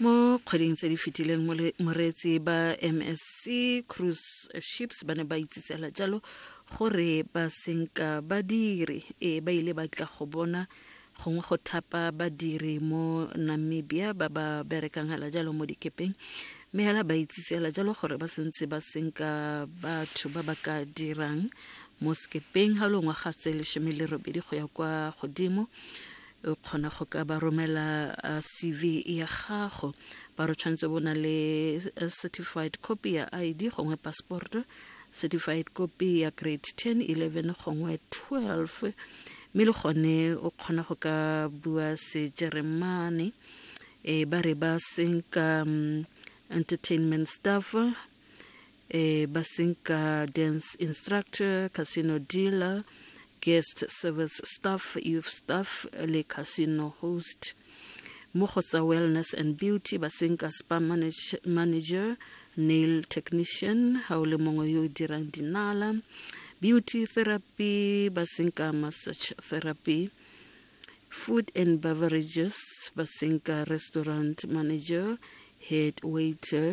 mo kgweding tse di fetileng moreetsi ba msc cruise ships ba ne ba itsisela jalo gore ba senka badiri e ba ile ba tla go bona gongwe go thapa badiri mo namibia ba ba berekang hela jalo mo dikepeng mme hela ba itsisela jalo gore ba sentse ba senka batho ba ba ka dirang mo sekepeng ga longwaga tse lesome le robedi go ya kwa godimo o kgona go ka ba romela uh, cv ya gago ba re tshwanetse bo na le uh, certified copy ya id gongwe passport certified copy ya grade 10 11 gongwe 12 mme le gone o kgona go ka bua sejeremane e ba re ba senka um, entertainment staff eh, basinka dance instructor casino dealer guest service staff youth staff le casino host mo go tsa wellness and beauty ba seng ka spa manage, manager nail technician ga o le mongwe yo o dirang dinala beauty therapy ba seng ka massage therapy food and beverages ba seng ka restaurant manager head waiter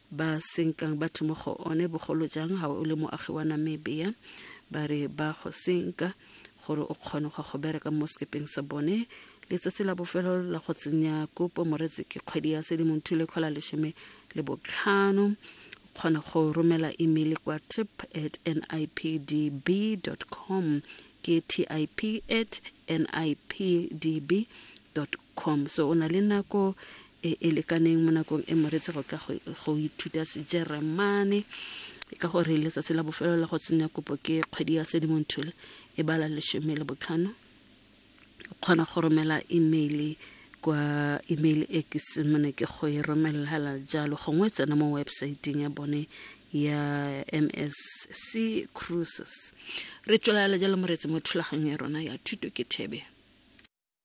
ba senkang batho mo go one bogolo jang ga o le moagi wa namibia ba re ba go senka gore o kgone go go bereka mo sekepeng sa bone letsatsi la bofelo la go tsenya kopo moretsi ke kgwedi ya sedimonthu le kgola lesome le botlhano o kgona go romela email kwa tip at nipdb com ke tip at nipdb com so o na le nako e, e lekaneng mo nakong e moretse go ka go ithuta sejeremane ka gore letsatsi la bofelo la go tsenya kopo ke kgwedi ya sedimonthole e bala lesome le botlhano o kgona go romela email kwa email e ke semone ke go e romelela jalo gongwe tsena mo websaeteng ya bone ya msc cruises re tswelela jalo moretsi mo thulaganyo ya rona ya thuto ke thebe